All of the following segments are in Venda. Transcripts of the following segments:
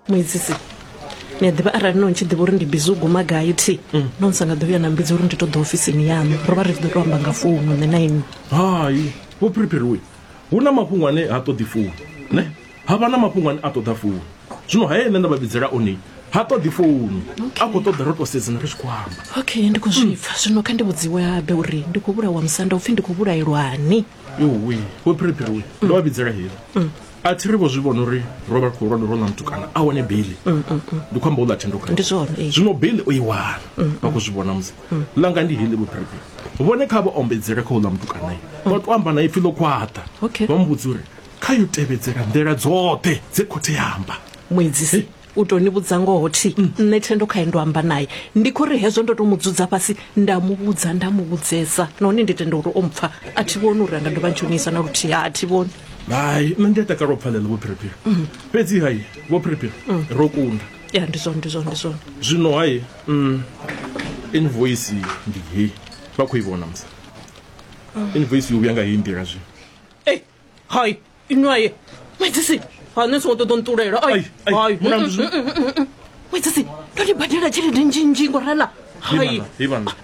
muedzisi ni a ḓivha arali no ntshi ḓivha uri ndi bizi u guma gai thi mm. no nsa nga ḓo vhuya na mbidzi uri ndi ṱoḓa ofisini yaṋu ro vha ri tshi ḓo to amba nga founu nṋe na inwi hai vho phiriphiriwe hu na mafhungo ane ha ṱoḓi founu ne ha vha na mafhungo ane a ṱoḓa founu zwino haye nṋe nda vha vhidzela one ha ṱoḓi founu a khou ṱoḓa ro to sedzana ri tshi khou amba okay ndi khou zwipfa zwino kha ndi vhudziwe habe uri ndi khou vhulawa musanda upfhi ndi khou vhulaelwani iwe wo phiriphiri we ndo vha vhidzela heli mm. a thi ri vho zwi vhona uri ro vha khou lwanda ro ḽa mutukana a wane beili mm, mm, ndi khou amba u ḽa thendoka zwino beili o i wana vha khou zwi vhona musi langa ndi heli vho phiriphiri vhone kha vha ombedzele kha u ḽa mutukanae vha to amba na ipfi ḽo khwaṱa vha mu vhudza uri kha yo tevhedzela nḓila dzoṱhe dze khothe ya amba muedzisi u to ni vhudza ngoho thi nṋe thendo khae ndo amba naye ndi kho ri hezwo ndo to mu dzudza fhasi nda mu vhudza nda mu vhudzesa nahone ndi tenda uri o mpfa a thi vhoni uri anga dovha ntshonisa na luthihi ha thi vhoni hai nṋe ndi a takala u pfalela vho phiriphiri mm. fhedzi hai vho phiriphiri mm. ro kunda ya ndi zwone ndi zwone ndi zwone zwino hai mm, invoice ndi hei vha khou i vhona musa invoice yo vhuya nga hei nḓila zwino hai inwi aye madzisi ha nṋe songo ṱoḓa nṱulela ai ai madzisi ndo ni badela tshelede nzhinzhi ngorala hai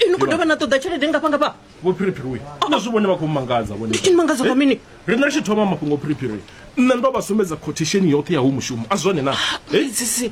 ini ku dovha na ṱoḓa tshelede ngafha ngafha vho phiriphiri uyu na zwi vhone vha khou mangadza vhone ndi mangadza nga mini ri nga tshi thoma mafhungo phiriphiri nṋe ndo vha sumbedza quotation yoṱhe ya hu mushumo a zwone na sisi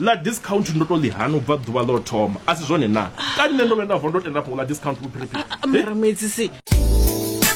Ḽa discount ndo to ḽi hana u bva ḓuvha ḽo thoma, a si zwone naa? Kani nṋe ndo vhuya nda vuwa ndo tenda fhungo ḽa discount vhuphiriphiri? Mara Muedzisi.